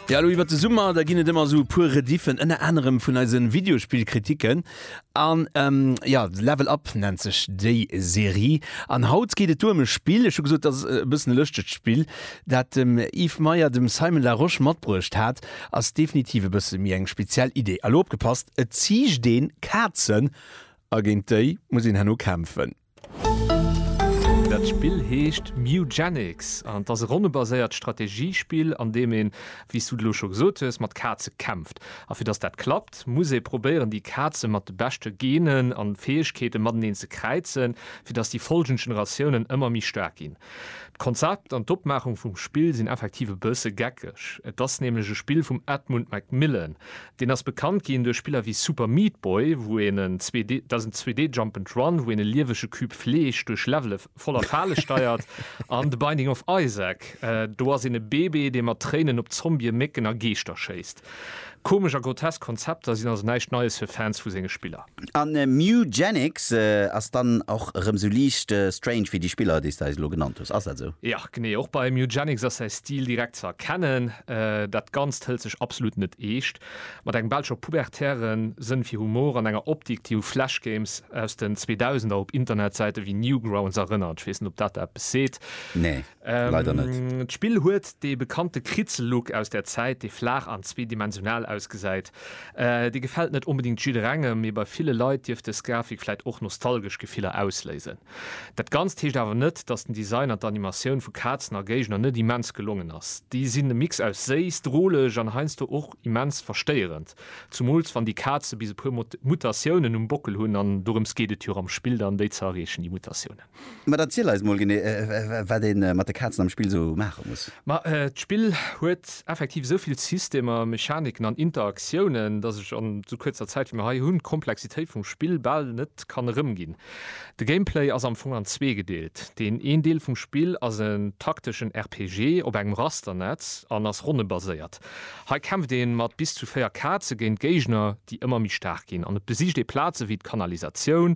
Ja lo iwwer de Summer, da ginn et ëmmer sou e puer Rediffen, ënner anerem vun eise Videospillkritiken. An ähm, ja, Level Up nennt sech déi Serie. An haut geet et duerm e Spill, ech hu gesot, dat ass e bëssen e lëschtegt Spill, dat dem Yves Meyer dem Simon Larosche matbruecht hat. Ass definitiv e bësse méi eng speziell Idee. A lo opgepasst, et ziicht een Kazen a géint déi muss een herno kämpfen. Dat Spill heescht Mewgenics an et ass e ronnebaséiert Strategiespill, an deem een, wéi s du et elo scho gesot hues, mat Kaze kämpft. A fir datt dat klappt, muss ee probéieren, déi Kaze mat de beschte Genen a Fäegkeete mateneen ze kräizen, fir datt déi follgend Generatiounen ëmmer méi staark ginn. D'Konzept an d'Opmaachung vum Spill sinn effektiv e bësse geckeg. Et ass nämlech e Spill vum Edmund McMillen, Deen ass bekannt ginn duerch Spiller wéi Super Meat Boy, wou een en 2D, dat ass en 2D Jump and Run, wou een e liewege Cube Fleesch duerch Levele voller Fale steiert, an The Binding of Isaac, do ass een e Bebe, dee mat Tréinen op Zombie, Mécken a Geeschter schéisst. Komesch a grotesk Konzepter sinn also näischt Neies fir Fans vu senge Spiller. A Mewgenics ass dann och erëm esou liicht strange wéi déi Spiller, déi s de eis elo genannt hues. Ass dat esou? Jo, genee. Och bei Mewgenics ass säi Stil direkt ze erkennen. Dat Ganzt hëlt sech absolut net eescht. Mat engem Belscher pubertäre Sënn fir Humor an enger Optik, déi u Flash-Games aus den Zweedausender op Internetsäite wéi Newgrounds erënnert. Ech weess net, ob dat der eppes seet. Nee. Leider net. D'Spill huet dee bekannte Kritzellook aus der Zäit, dee flaach an zweedimensional ausgesäit. Dee gefält net onbedéngt jidderengem, mee bei ville Leit dierft dës Grafik vläit och nostalgesch Gefiller ausléisen. Dat Ganzt heescht awer net, dass den Design an d'Animatioun vu Kazen a Géigner net immens gelongen ass. Déi sinn e Mix aus séiss, droleg an heiansdo och immens verstéierend, zumools wann déi Kaze bis e puer Mutatiounen um Bockel hunn, an dorëms geet et jo am Spill dann, déi ze erreechen, déi Mutatiounen. Mä erziel eis mol genee, wat ee mat de Kazen am Spill esou maache muss. Ma d'Spill huet effektiv esou vill Systemer, Mechaniken an Interaktiounen, datt ech an esou kuerzer Zäit, wéi mir hei hunn, d'Komplexitéit vum Spill bal net kann erëmginn. De Gameplay ass am Fong an zwee gedeelt. Deen een Deel vum Spill ass en takteschen RPG op engem Rasternetz an ass ronnebaséiert. Hei kämpft ee mat bis zu véier Kaze géint Géigner, déi ëmmer méi staark ginn, an et besicht ee Plaze wéi d'Kanalisatioun,